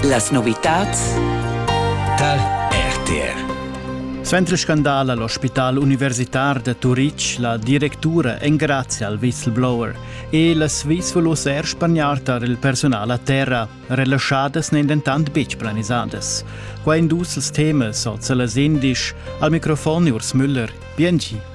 Las novitads tar RTR. Suenter scandal a l'ospital universitar da Turitg, la directura engrazia al whistleblower e las Swiss volus er spagnar tar il personal a terra. Relaschadas n'èn dentant betg planisadas. Qua in dus temas oz las indisch. Al microfon Urs Müller. Biengi.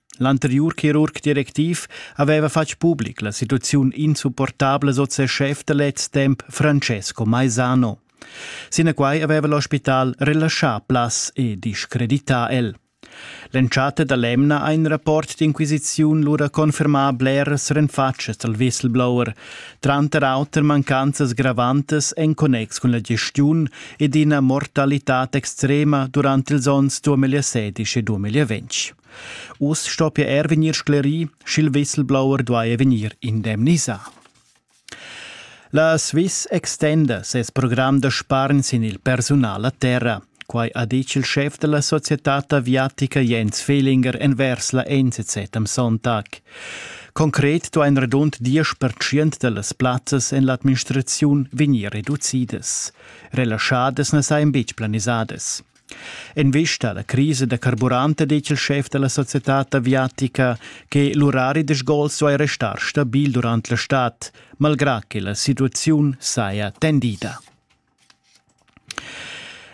L'anteriur chirurg directiv haveva fatg public la situaziun insupportabla sot ses schef da lez temps Francesco Maisano. Sinaquai haveva l'ospital relaschà plas e discredità el. L'entschatta da l'emna ha in rapport d'inquisiziun lura confermà bleras renfatschas dal whistleblower, tranter auter mancanzas gravantas en connex cun la gestiun ed ina mortalitad extrema durant ils onns 2016 e 2020. Uss stoppia er vegnir sclerì, sch'il whistleblower duaja vegnir indemnisà. La Swiss extenda ses program da spargn sin il persunal a terra. Quai ha ditg il schef da la societad aviatica Jens Fehlinger envers la NZZ am Sonntag. Concret duain radund diesch pertschient da las plazzas en l'administraziun vegnir reducidas. Relaschadas na sajan betg planisadas. En vista alla crisa da carburante dice il chef della società aviatica che l'urari de sgol suoi restar stabil durante la stad, malgrà che la situazione saja tendida.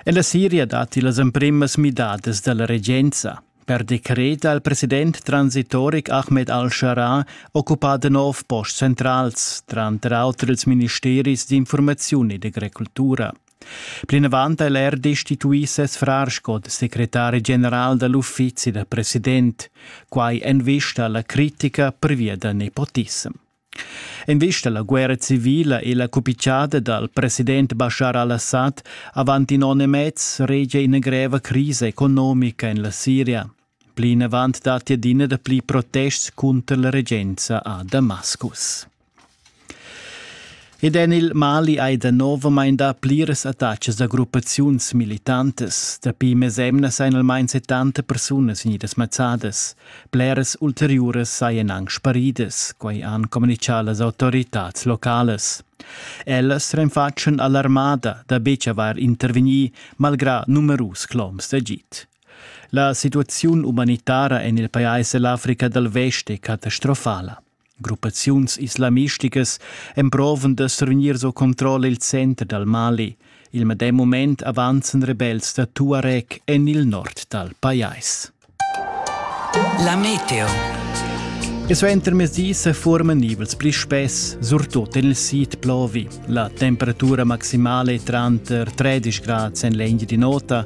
En la Siria dati las emprimas midadas della regenza. Per decret ha il president transitoric Ahmed al-Shara occupato nov post centrals, tranter auter ils ministeris d'informazione e d'agricoltura. Plinavant è er destituì ses frar sco secretari general da l'uffizi da president, quai en vista a la critica pervia da nepotissem. En vista alla guerra civile e la cupicciada dal president Bashar al-Assad avant in onn e mez regia ina greva crisa economica en la Siria. Plinavant datti adina dapli protests cunter la regenza a Damascus. Ed en il Mali hai danovamain dà pliras attacas da gruppaziuns militantas. Dapi mesemnas ein almain 70 persunas vegnidas mazzadas. Bleras ulteriuras sajan anc sparidas, quai han communitgà las autoritads localas. Ellas renfatschan alarmada da betg avair intervegnì malgrà numerus cloms d'agid. La situaziun umanitara en il pajais e l'Africa dal Vest è catastrofala. Gruppaziuns islamisticas emprovan da survegnir sco controlla il center dal Mali. Il medem mument avanzan rebels da Tuareg en il nord dal pajais. La meteo. E suenter mezdi se forman nivels pli spess, surtut en il sid plovi. La temperatura maximale è tranter 13 gradi en l'India di nota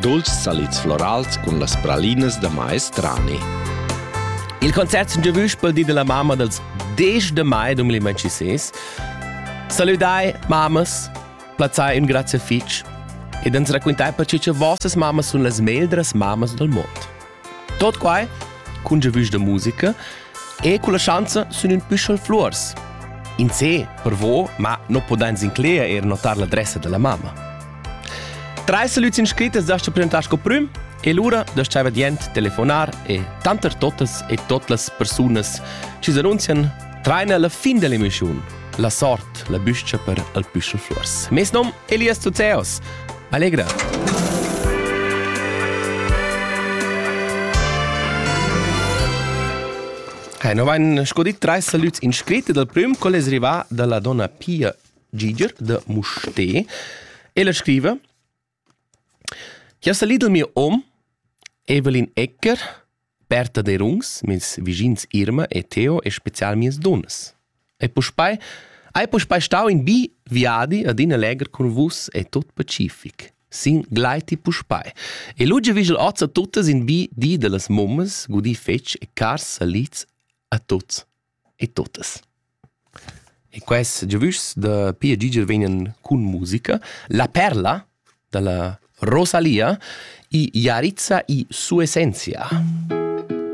Dolce salids florals cun las pralinas da maestrani. Il concert sun giovüs pel di della mamma dels 10 de mai 2026. Salüdai, mammas, plazzai ün grazie fich ed ans raquintai per che vossas mammas sun las meglras mammas del mond. Tot quai, cun giavüsch da musica, e culla schanza sun ün püschel fluors. In se, per vo, ma non podans incleger eir notar l'adressa della mamma. Trais salüds inscrittas dast presentar sco prüm e lura dast tschaiver dient telefonar e tanter totas e tot las persunas chi s'annunzian traina la fin dell'emissiun. La sort, la büscha per al püschel flors. Mes nom Elias Zuzeos. Allegra! Hey, no vain scodit trais salüts inscritti dal prüm col es rivà da la donna Pia Giger da Musté. Ella scriva Jeu salid dal mio hom, Evelin Ecker, Berta Derungs, meis vischins Irma e Theo e special mias dunnas. E puspei hai puspei stau in bi viadi adina legher cun vus e tot pacific. Sin gleiti puspei. E lu giu vigel oz a tuttas in bi di dallas mummas, gudì fetg e cars salids a tuts. e totas. E quest giavüschs da Pia Giger vegnan cun musica. La perla da la Rosalia i Jarizza i Sua essentia.